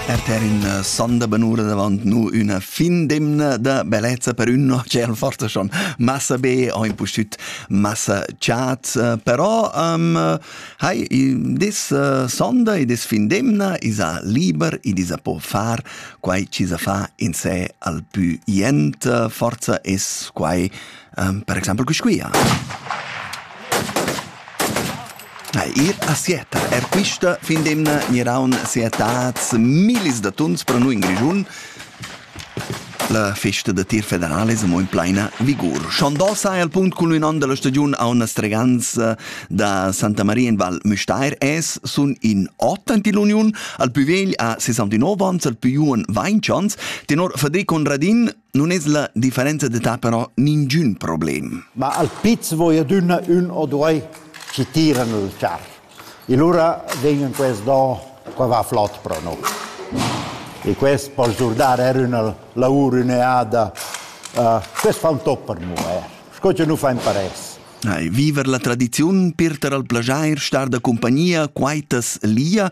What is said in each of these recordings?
Er per in äh, son da benura davant nu üna fin d'emna da bellezza per ün no tschel forza schon massa be ho impustüt massa chat äh, però um, hai dis äh, sonda e dis fin d'emna isa liber e isa po far quai ci sa fa in se al più jent forza es quai um, per exempel quisquia. Ir a Sieta er quista fin d'emna gniraun sietats millis da tuns per noi in Grischun. La festa da tir federale è mo in plaina vigur. Schandal sai al punct cun l'unan della stagiun a una streganza da Santa Maria in Val Müstair es sun in ot ant l'uniun al più vegl a 69 ans al più un 20 ans tenor Federico Conradin Non es la differenza d'età però ningün problem. Ma al piz vo i adüna ün o due chi tiran il char. E lura vegnan quels do qua va flot pro noi. E quest po sdurdar er üna lavur üneada. Uh, quest fa un toc per mu er. Sco che nu fa in pares. Ai, viver la tradiziun, pirter al plajair, star da compagnia, quaitas lia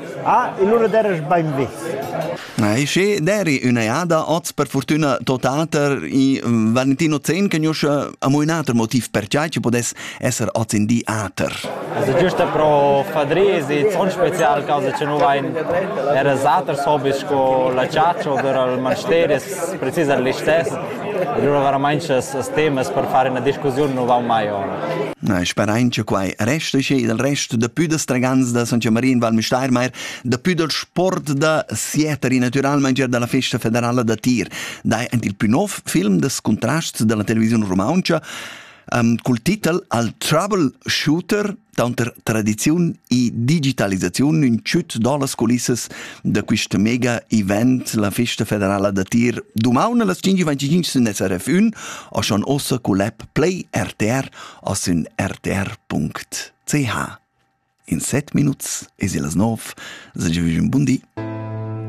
Ah, e lura deras bainvis. Na, e sche deri ün'eada oz per fortüna totater i Valentino Zen che gnusce amo ün ater motiv perciai che podess esser oz in di ater. Also giusto pro fadrir si zon special causa che nu vain eras aters hobbies sco la caccia oder al monasteri precis al listess Allura veramain sas as temas per far üna discussiun nu vaun mai ora. Na, sperain che quai resta schi dal resto da più da stragans da San Marin Val Müstairmeier, da più dal sport da Sieter e naturalmente er dalla festa federala da tir. Dai ant il più nov film des contrasts della televisione rumantscha um, col titel Al Troubleshooter Tanter tradiziun e digitalisaziun ün tschüt da las culissas da quist mega event, la Festa federala da tir, dumaun las 5.25 sun SRF 1 a schon ossa cul app Play RTR a sün rtr.ch. In set minuts es illas 9, sage vügin bun di.